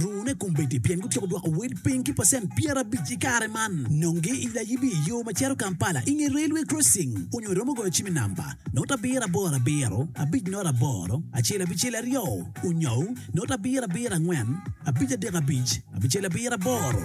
Rune kombeddi pien gutyeko dwoko wel piny ki pacent pyerabic i kare man. Nonge i layibi i yo ma cito Kampala i nge railway crossing onyo iromo goyo cim i namba not abiro aboro abiro abic not aboro acel abicel aryo onyou not abiro abiro angwen abic adek abic abicel abiro aboro.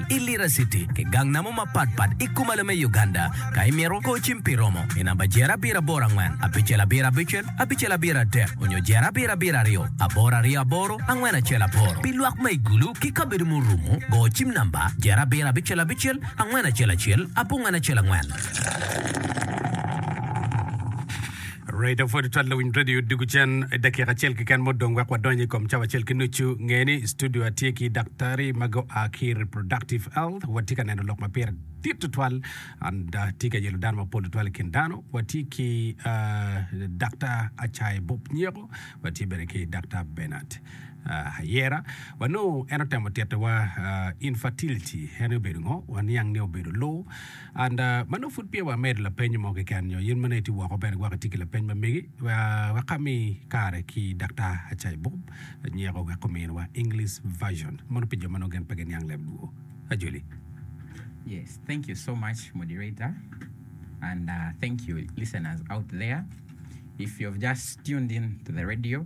i Lira City ki gang namo mapat pat i Kumalo me Uganda. Ka imito kor cim pi romo i namba jero abiro aboro angwen, abicel abiro abicel, abicel abiro adek, onyo jero abiro abiro aryo, aboro aryo aboro, angwen acel aboro. Pi lwak ma i gulu ki kabedo ma orumo, go cim namba jero abiro abicel abicel, angwen acel acel, abongwen acel angwen. Radio 42 lawiny radio odiko cen i dakika acel keken mo dong wek wadonyo i kom cawa acel ki nucu. Ngeye ni i studio atye ki daktari ma gua ki Reproductive Health. Watye ka neno lok ma pire dit tutwal and uh, tye ka yelo dano mapol tutwal i kin dano. Watye ki uh, Daktar Acayi Bob Nyeko, watye bene ki Daktar Bernard uh, Ayera. Wanongo en otemo titowa uh, infertility, en obedo ngo? Waniang ni obedo loo. And ma nongo pud pire wa medo lapenyo mo keken nyo yen ma nongo itye woko bene gwok itye ki lapeny ma megi wek ami kare ki Daktar Acai Bob anyeko wek omin wa English version mono pi jo ma nongo gin pe giniang leb luo. Ajoli. Yes, thank you so much moderator and thank you listeners out there if you have just tuned in to the radio.